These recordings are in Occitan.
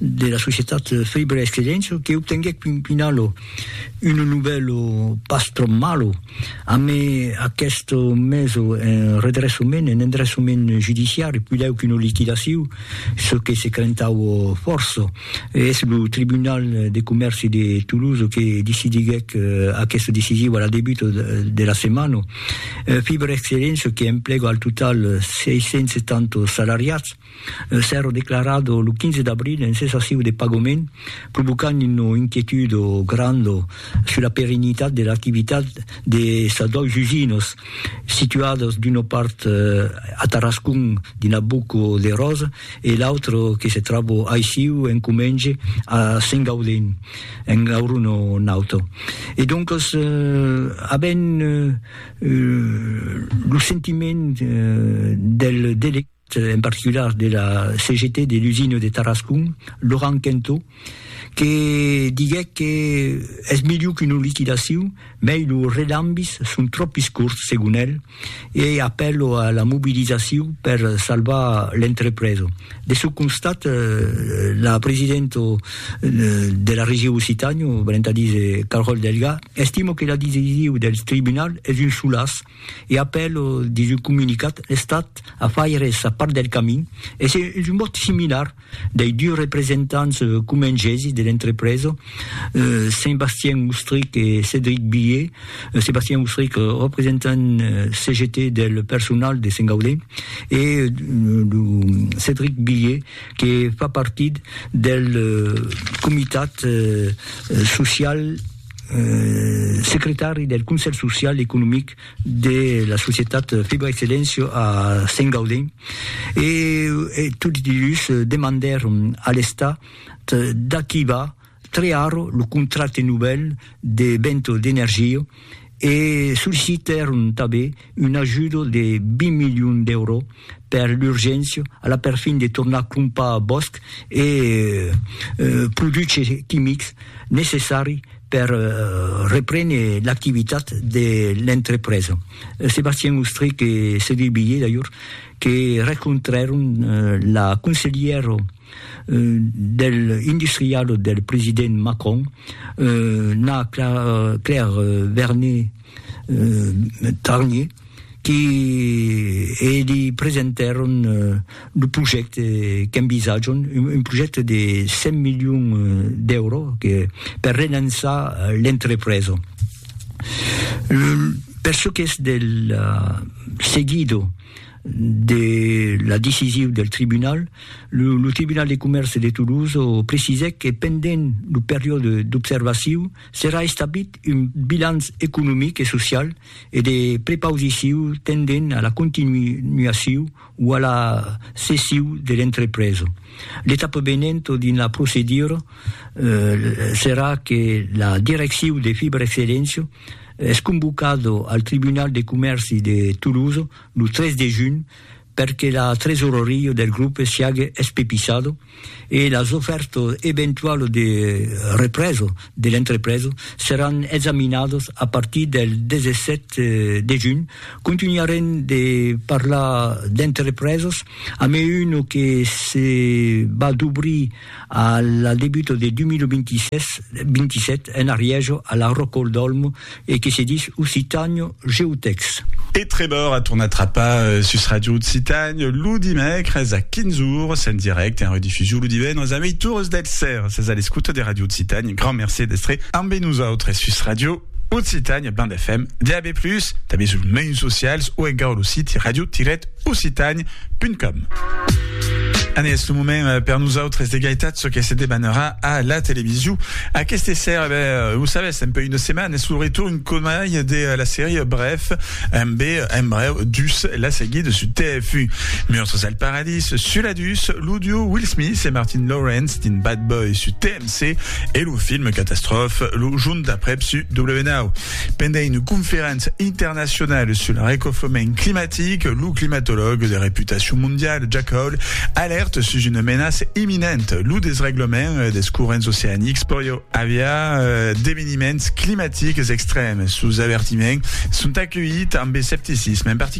de la societat Faber Excellencio que obtenguèc pin pinalo un nubèlo pas tròp malo amé aqueste meso en redressament, en endressament judiciari, pilèu qu'una liquidaciu, çò que se crentaue fòrça. Es lo Tribunal de Comèrci de Toulouse que decidiguèc aqueste decisiu a la debuta de la setmana. Faber Excellencio que emplega al total 670 salariats, Un sèrro declarat lo 15 d'abril en cessaciu de pagament, provocant una inquietud granda sus la perennitat de l'activitat de sas dois usinas, situadas d'una part a Tarascon dins la Boca de Rosa e l'autra que se tròba aissiu en comenge a Sengaudin, en Gaurona Nauta. E doncas avèm lo sentiment del delegat. en particular de la CGT de l'usina de Tarascon, Laurent Quentot, que diguèc que es melhor qu'una liquidacion, mei lo relambis son tropis corts, segon el, e apèlo a la mobilizacion per salvar l'entrepresa. De çò constat, la presidenta de la Region Occitània, valent a díser Carole Delga, estima que la decision del tribunal es un solàs, e apèl, dins un comunicat, l'Estat a faire sa part del camin, e se un vòt similar dei dus representants comengesi de l'entrepresa, Saint-Bastien Ustrich e Cédric Billié, Saint-Bastien Ustrich, representant CGT del personal de Saint-Gaudé, e lo Cédric Billié que fa partit del comitat social. secretari del Conselh Social e Economic de la societat Fibra Excellencio a Sent Gaudent e tots dus demandèron a l'Estat d'activar crear lo contracte novèl de Vento d'Energia e sollicitèron tanben un ajudo de 20 milions d'èuro per l'urgéncia a la perfin de tornar crompar bòsc e produches quimics necessari per reprene l'activitat de l'entrepresa. Sébastien Ostrich e Cédric Billé d'ajor que rencontrèron la conselhièra del industrial del president Macron, Na Claire Vernet, Tarnier, qui li presentèron lo projècte qu'envisatjam, un projècte de 100 milions d'èuros que per relançar l'entrepresa. Per çò qu'es del seguido de la decisiu del tribunal, lo Tribunal de Comèrce de Toulouse precisèc que pendent lo periòde d'observaciu, Serà establit un bilanç economic e social e de prepausiciu tendent a la continuaciu o a la cessiu de l'entrepresa. L'etapa venent dins la procedura serà que la direcciu de Fibrexcellentia es convocada al Tribunal de Comèrci de Tolosa lo 3 de junh per que la tresoreria del grupe siague espepisado e las ofèrtas eventualas de represa de l'entrepresa seràn examinadas a partir del 17 de junh. Contunharem de parlar d'entrepresas, a mai una que se va d'obrir A la debuta de 2026-27 en arrièja a la Rocol d'Olmo e que se dis Occitània GeoText. E Trevor a tornat trapar sus Ràdio Occitània lo dimècres a 15 ores en dirècte e en redifusion lo divendres a meitures del sèra. Sètz a l'escota de Ràdio Occitània. Grand mercé d'èstre ambe nosautres sus Ràdio. Occitània Band FM, DAB+, tanben suls mèus socials o encara lo siti radio-occitània.com. Anne, es lo moment eh, per nosautres de gaitat çò que se debanarà a la television. Aquesta sèra, ben, eh, ho sabes, un peu una setmana, es lo retorn comai de eh, la sèrie Bref, amb en breu dus la seguida su TF1. Meurtres al Paradís, Suladus, l'audio Will Smith e Martin Lawrence din Bad Boy su TMC. Se e lo film Catastrophe, lo junh d'aprèp su W9. Pendent una conferéncia internacionala sul arrecofrement climatic, lo climatològ de reputacion mondiala Jack Hall alèrta sus una menaça imminenta, lo desreglament dels corrents oceanics pòria aviar d'eveniments climatics extrèms. Sos avertiments son aculhits amb escepticisme, en particular,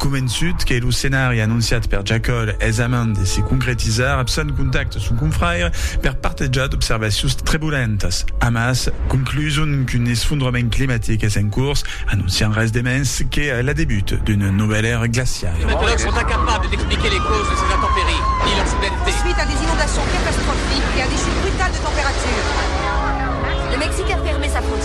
Convençut que lo scenari anonciat per Jacòl es a mand de se concretizar, Abson contacta son confrère per partejar d'observacions trebulentas. Amas, concluson qu'un esfondrament climatic es en cors, anonciant res de mens que l'adebut d'una novèla èra glaciala. Les meteorologues sont incapables d'expliquer les causes de ces intempéries, ni leur soudainete. Suite à des inondations catastrophiques et à des chutes brutales de température, le Mexique a fermé sa frontière.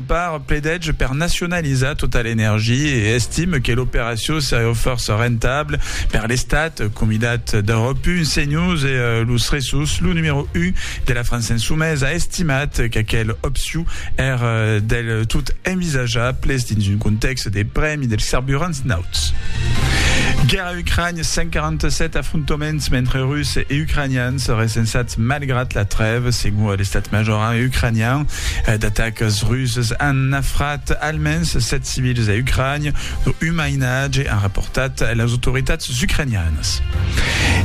Barr pledège per nacionalizar Total Energy e estime que l'operacion seriá fòrça rentable per l'Estat, comidat d'Europe Un, CNews e Los Ressos, lo numèro un de la França Insoumise a estimat qu'aquel opcion èr del tot envisajable dins un contèxt de prèmi dels carburants nauts. A Ucrània, 147 afrontaments mentre Russes e Ucranians recensats malgrat la trèva, segon l'estat major ucranian. D'atacas russes an nafrat almens 7 civils a Ucrània, dont un mainatge, an raportat las autoritats ucranianas.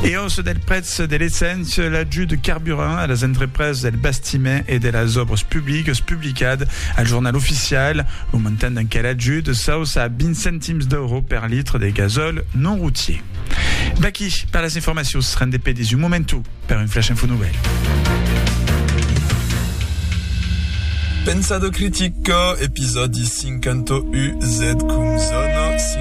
E òssa del prètz Eth deleçament sur l'ajut de carburant a las entrepreses del bastiment e de las òbres publiques publicat al Jornal Oficial lo montant d'enquer ajut s'auça a 20 centims d'euro per litre de gasòl non routier. D'aquí per las informacions, rende pedis un momentu per un flash info novèl. Pensado critic, episòdi 51, zcum zona 5.